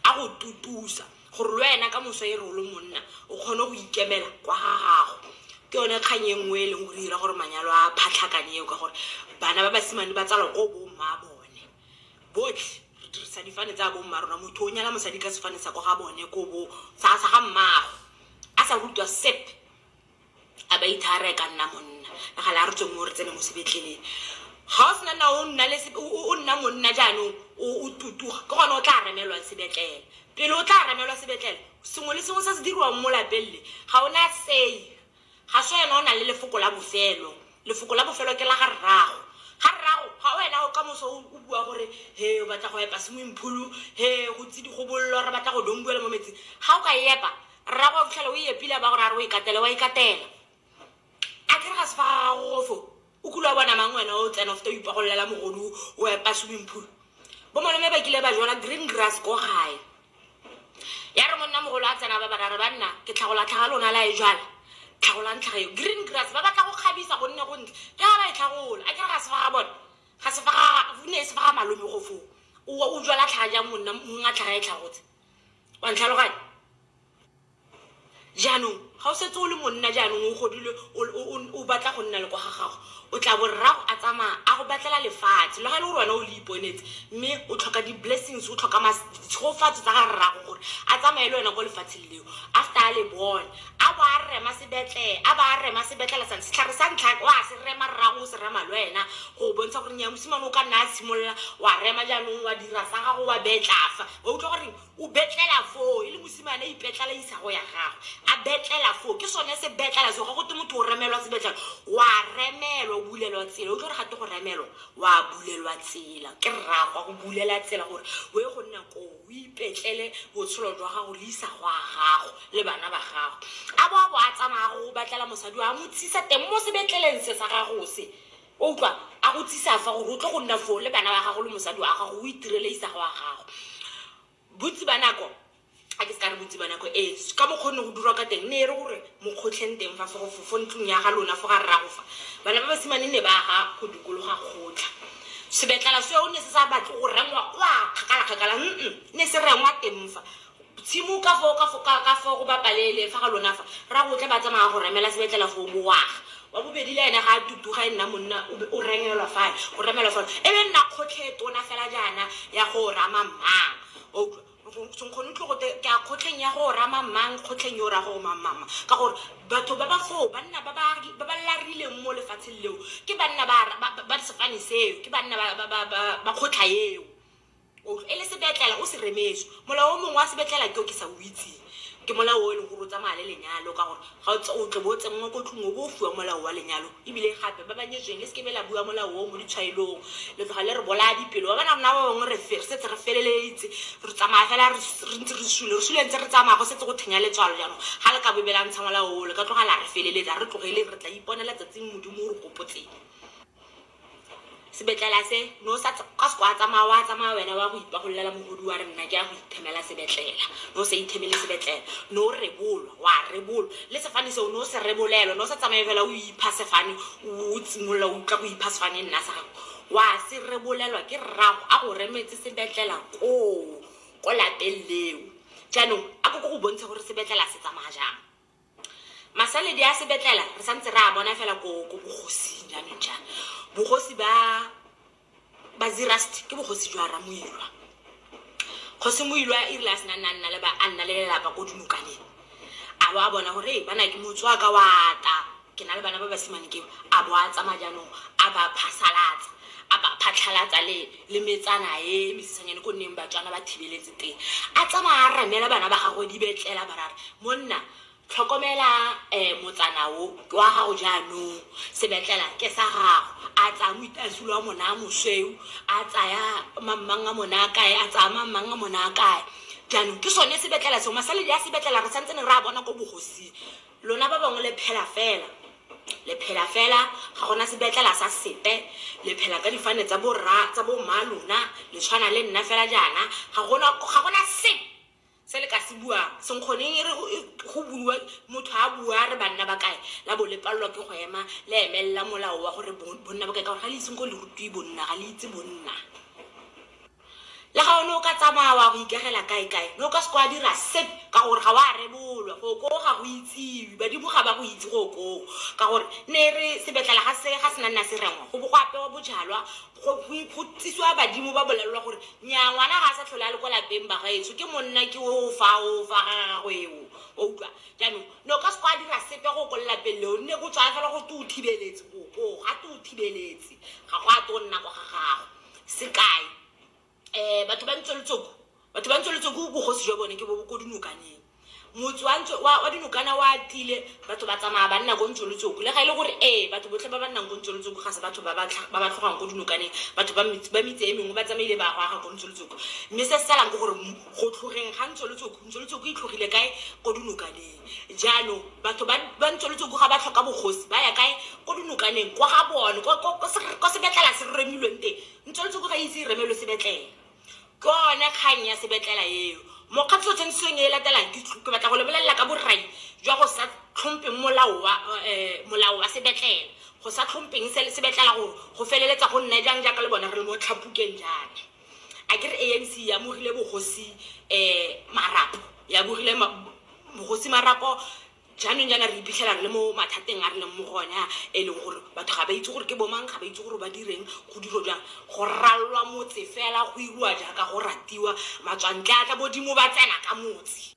a go tutusa gore le wena ka moso e re o le monna o kgone go ikemela kwa ga gago ke yone kgang e nngwe e leng gore dira gore manyalo a phatlhakane eo ka gore bana ba basimane ba tsalwa ko bomma bone botlhe re dirisa difane tsa bomma rona motho o nyala mosadi ka sefane sa ko ga bone ko bo sa ga mmago a sa rutwa sepe a ba itshare e ka nna monna ka gale a re tswe mo re tsene mo sebetleleng ga o sena na o nna le se- o o- o nna monna jaanong o o tutuga ke gone o tla remelwang sebetlele pele o tla remelwa sebetlele sengwe le sengwe se se diriwang mo lapeng le ga o na sei ga se wena o nang le lefoko la bofelo lefoko la bofelo ke la ga rrago ga rrago ga wena o ka moso o o bua gore he o batla go epa swimming pool he go tse di go bollo re batla go dongbuela mo metsing ga o ka epa Rrago wa fitlhela o e epile a ba gore a re o ikatele wa ikatela a kere ga se fa ga gago gofo o kule wa bona mang wena o tsena o feta o ipagololela mogodu o epa swimming pool bo malome ba kile ba jala green grass ko gae ya re monna mogolo a tsena ba barare ba nna ke tlhagola tlhaga lona la e jala tlhagolang tlhaga eo green grass ba batla go kgabisa gonne go ntle ke ga ba e tlhagola a kere ga se fa ga bona ga se fa ga ne e se fa ga malome gofo o o jala tlhaga jang monna mongwe a tlhaga e tlhagotse wa ntlhaloganya jaanong ga o setse o le monna jaanong o godile o- o- o- o batla go nna le kwa ga gago o tla bo rrago a tsamaya a go batlela lefatshe le ga e le gore wena o le iponetse mme o tlhoka di-blessings o tlhoka mas- ditshogofatso tsa ga rrago gore a tsamaye le wena kwa lefatsheng leo after a le bone a bo a rema sebetlele a ba a rema sebetlele sa setlhare sa ntlha o a se rema rrago o se rema le wena go bontsha gore nya mosimane o ka nna a tshimolola wa rema jaanong wa dira sa gago wa betlafa wa utlwa gore o betlela foo e le mosimane a ipetlela isago ya gagwe a betlela foo ke sone se betlela seo ga go te motho o remelwa sebetlela wa remelwa o bulelwa tsela utlwa gore ga te go remelwa wa bulelwa tsela ke rragwa go bulela tsela gore o ye go nna koo o ipetlele botshelo jwa gago le isago ya gago le bana ba gago a bo a bo a tsamaya go batlela mosadi wa mo tsisa teng mo sebetleleng se sa gago se O utlwa? A go tsise afa gore o tle go nna foo le bana ba gago le mosadi wa gago, o itirele Isaga wa gago. Bontsi ba nako, a ke se ka re bontsi ba nako, ee, s- ka mokgwa o ne go dirwa ka teng, ne e re gore mo kgotlheng teng fa, fo- fo fo ntlong ya ga lona, fo ga rrago fa, bana ba basimane ne ba aga go dikologa kgotlha. Sebetlala seo ne se sa batle go rengwa kwa kgakala-kgakala, mm-mm, ne se rengwa teng fa. Tshimo ka fo, ka fo, ka, ka fo go ba palele fa ga lona fa, rrago o tla ba tsamaya go remela sebetlela foo, bowaga. Wa bobedi le ene ga a tutuga e nna monna, o be o remelwa fale, o remelwa fale. E be e nna kgotlhe e tona fela jaana ya go rama mmang. Wa utlwa? Nkgono tlhogo te, ke a kgotlheng ya go rama mmang, kgotlheng yo o raya gore mang, mang, mang. Ka gore batho ba ba foo, banna ba ba, ba ba larileng mo lefatsheng leo, ke banna ba, ba, ba, ba sefane seo, ke banna ba, ba, ba, ba, ba kgotlha eo. O utlwa? E le sebetlela o se remetswe. Molao o mongwe wa sebetlela ke o ke sa o itseng. Ke molao o e leng gore o tsamaya le lenyalo ka gore ga o tse o tle bo o tsenngwa ko tlung o bo o fiwa molao wa lenyalo. Ebile gape ba ba nyetsweng le seke be la bua molao o mo ditshwaelong, le tloga le re bolaya dipelo. Ba ba na rona ba bangwe re re setse re feleletse, re tsamaya fela re re ntse re sule. Re sule ntse re tsamaya go setse go thenya letswalo jaanong. Ga le ka bobe la ntsha molao o, le ka tloga la re feleletsa. Ga re tlogele re tla iponela tsatsing Modimo o re gopotseng. sebetlela se no sa ka se kwa tsamaya wa tsamaya wena wa go ipagololela mogodi wa re nna ke ya go ithemela sebetlela no sa ithemele sebetlela no rebolwa wa rebolwa le sefane seo no se rebolelo no sa tsamaye fela o ipha sefane o tsimolola o tla go ipha sefane nna sa gago wa se rebolelwa ke rrago a go remetse sebetlela koo ko lapeng leo jaanong a ko ko go bontsha gore sebetlela se tsamaya jang Masaledi a sebetlela re santse re a bona fela ko ko bogosing jaanong jaana. Bogosi ba ba Zerust ke bogosi jwa Ramoilwa. Kgosi Moilwa e rile a sena nna nna le ba a nna le lelapa ko dinokaneng. A bo a bona gore ee bana ke motswaka wa ata Ke na le bana ba basimane ke a bo a tsamaya jaanong a ba phasalatsa a ba phatlhalatsa le le metsana e mesisanyane ko nneng batswana ba thibeletse teng a tsamaya a ramela bana ba gagwe di betlela barara monna tlhokomela um motsana o ke wa gago jaanong sebetlela ke sa gago a tsaya moitasolo wa mona a mosweu a tsaya mammang a mona a kae a tsaya mammang a mona a kae jaanong ke sone sebetlela seo masaledi a sebetlela re santse ne re a bona ko bogosing Lona ba bangwe le phela fela. Le phela fela, ga gona sebetlela sa sepe. Le phela ka difane tsa borra, tsa bomma lona. Le tshwana le nna fela jaana. Ga gona, ga gona sepe se le ka se buang. Senkgoneng e re go, go buiwa, motho a bua a re banna ba kae, la bo le palelwa ke go ema, le emelela molao wa gore bo, bonna ba kae, ka gore ga le ise senkgong le rutiwe bonna, ga le itse bonna. Le ga o ne o ka tsamaya wa go ikagela kae-kae, ne o ka se kwa dira sep, ka gore ga wa rebolwa. Go koo ga go itsiwe, badimo ga ba go itse go koo. Ka gore ne e re sebetlela ga se ga se na nna se rengwa, go bo go apewa bojalwa, go go tsisiwa badimo ba bolelelwa gore nyaa ngwana ga a sa tlhole a le kwa lapeng bagaetsho, ke monna ke o fa o fa ga gagwe eo. Wa utlwa? Jaanong ne o ka se kwa dira sepe go ko lelapeng leo, nne go tsaya fela go te o thibeletse go koo, ga te o thibeletse ga go a twe go nna kwa ga gago. sekai um batho ba ntse letsoko batho ba ntse letsoko bogosi jwa bone ke bo ko dinokaneng motse wa ntse wa wa dinokana wa tile batho ba tsamaya ba nna ko ntse letsoko le ga e le gore ee batho botlhe ba ba nnang ko ntse letsoko ga se batho ba ba tlha- ba ba tlhogang ko dinokaneng batho ba metse- ba metse e mengwe ba tsamaile ba go aga ko ntse letsoko mme se se salang ke gore m- go tlhogeng ga ntse letsoko ntse letsoko e tlhogile kae ko dinokaneng Jaanong batho ba ba ntsweletse go ga ba tlhoka bogosi ba ya kae ko dinokaneng kwa ga bone kwa- kwa- kwa se- kwa sebetlela se remilweng teng ntsweletse go ga itse e remelwe sebetlela ke one kgang ya sebetlela eo mokgatlho tshwantseng e e latelang ke tl- ke batla go lebelela ka borai jwa go sa tlhompeng molao wa eh, molao wa sebetlela go sa tlhompeng se- sebetlela gore go feleletsa go nna jang jaaka le bone re le mo tlhapukeng jaana a ke re anc e amogile bogosi um marapo e amogile ma- bogosi marapo jaanong jaana re iphitlhela re le mo mathateng a re leng mo go one a e leng gore batho ga ba itse gore ke bomang ga ba itse gore ba direng go diro jang go ralwa motse fela go iriwa jaaka go ratiwa matswantle a tla bodimo ba tsena ka motse